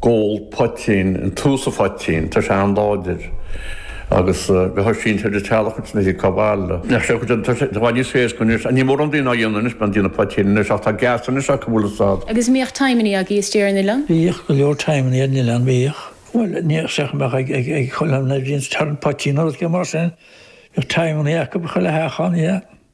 Ag ól poitín, an tús a phoitín, tá sé an-láidir agus bheadh sé sínte ar an teallach agus ní thig cá bhfail do. Ar chaoi éicint tá sé i bhfad níos éasca anois ach níl mórán daoine á dhéanamh anois, bíonn déanamh poitín anois ach tá geas anois acu bhfuil fhios a'd. Agus an mbíodh timeannaí agaibh istigh ar an oileán? Bhíodh go leor timeannaí ar an oileán, bhíodh. Bhuel níl fhios a'd an mbeadh ag, ag, ag chuile, bhíonn turn poitín nó rud éigin mar sin, bhíodh timeannaí acub i chuile theach ann, yeah.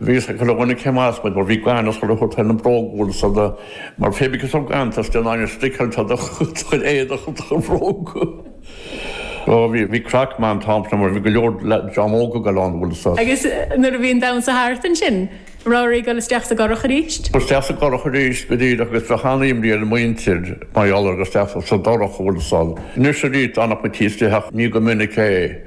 Bhídís ag cur dhá chéill as muid mar bhí gaineamh is chuile shórt i na bróga uilig is eile mar phébí go raibh scantas den ghaineamh stickeáilte do do chuid éadaigh is do bhróga. Ó bhí, bhí craic maith an t-am sin mar bhí go leor dream óga ag dul ann is. Agus nuair a bhí an damhnsa thart ansin, raibh oraibh a dhul isteach sa gcurach arís? Bhí dhul isteach sa gcurach arís go díreach agus bheadh an-imní ar an muintir mar gheall ar dhul isteach sa dorchadas is eile. Anois aríst d'fhanfadh muid taobh istigh ach ní go minic é.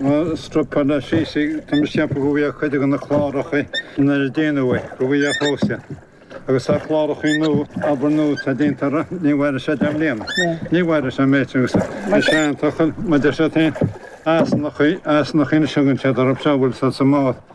Má stopfar na siosaí tá mise ag ceapadh go bhfaighidh cuid de na cláracha nár déanadh é, go bhfaighidh a chósta. Agus tá cláracha nua, obair nua atá déanta air, ní mhairfidh sé deich mbliana, ní mhairfidh sé méid sin agus tá sé an-tochailt. Maidir leis an Easnach, Easnach Inis a dhein siad orm, seo a bhfuil sa mbás.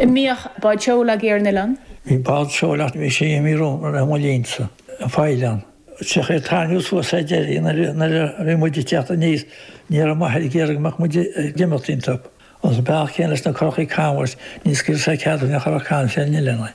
An mbíodh báid seoil agaibh ar an oileán. Bhí báid seoil ach bhí sé imithe roimh mo linnse as an oileán. Bhíodh sé ag tarraingt suas sa deireadh nuair a bhí muid ag teacht aníos ní raibh m'athair ag iarraidh go mbeadh muid ag imeacht ionnta. Agus an bealach céanna leis na currachaí canbháis níor scaoil sé cead aon churach canbháis ar an oileán.